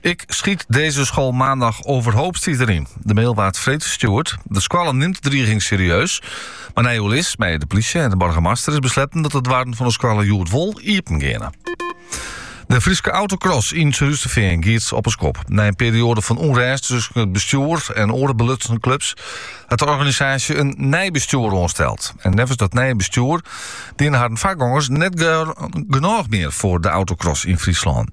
Ik schiet deze school maandag overhoop, stiet der yn. De mail waard freed ferstjoerd. De skoalle nimt de driging serieus. Mar nei oerlis mei de plysje en de boargemaster is besletten dat de doarren fan de skoalle hjoed wol iepen geane. De Fryske autocross yn Surhústerfean giet op 'e skop. Nei in perioade fan ûnrêst tusken it bestjoer en oare belutsende klups hat de organisaasje in nij bestjoer oansteld. En neffens dat nije bestjoer diene harren foargongers net genôch mear foar de autocross yn Fryslân.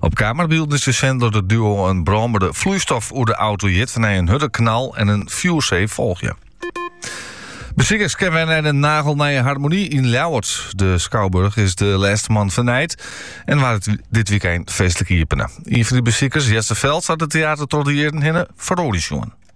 Op kamerbylden is te sjen dat it duo in brânbere floeistof oer de auto jit, wêrnei in hurde knal en in fjoersee folgje. Besikers kinne wer nei de nagelnije Harmonie yn Ljouwert. De skouburch is de lêste moannen fernijd en waard dit wykein feestlik iepene. Ien fan dy besikers, Jesse Veld, hat it teater troch de jierren hinne feroarjen sjoen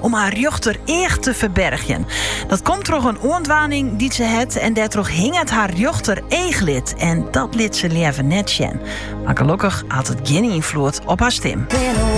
om har rjochter each te ferbergjen. Dat komt troch een oandwaning die ze het en daardoor hing het haar rjochter eeglid en dat liet ze liever net sjen. Maar gelukkig had het geen invloed op haar stim.